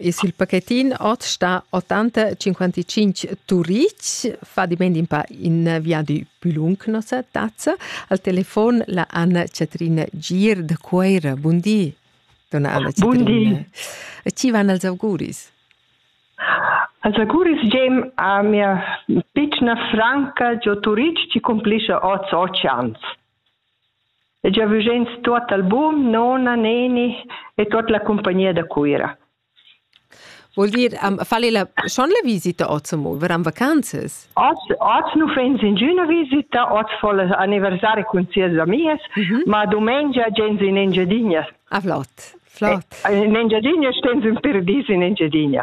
Es il pacchettin ot sta 85 Turic, fa diment in pa in viadi più lung nossa tazza. Al telefon la Anna Catrina Gir da Cuoira. Bundi, donna Anna Catrina. Bundi. E ci van als auguris? Als auguris gem a mia piccina franca Gio Turic ci complisce oz oceans. E giavüsch'ins tuot album, nona, neni e tuot la cumpagnia da Cuira. Vuol dir, um, fal ella schon la visita oz amo, varan vacanzas? Oz, oz nu fens ingüna visita, oz fa l'anniversari cun sias amias, mm -hmm. ma dumengia gens in Engiadina. Ah, flott, flott. In Engiadina stens ün per dis in Engiadina.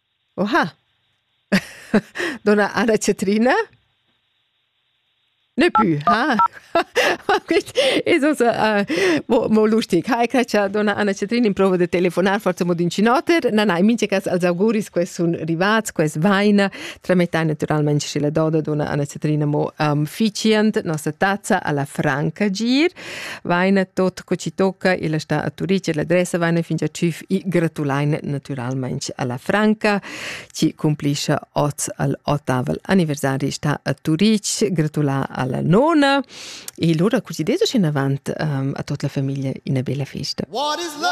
Oha. Donna Anna Catrina? Ne pü, ha? Es uns mo mo lustig. Hai che cha donna Anna Catrina improva da telefonar forsa mo d'incinoter. Na, na, in mincha cas als auguris che sun rivats, che vaina. Tramettai natüralmaing schi la doda donna Anna Catrina mo am fitschiand nossa tazza alla Franca Gir. vaina tot co ci tocca illa sta a Turic e l'adressa vaina fin già tschüf i gratulaina natüralmaing alla Franca ci cumplischa oz al ottavel anniversari sta a Turic gratulà alla nona e lura cu ci desu scin avant um, a tot la famiglia ina bella festa What is love?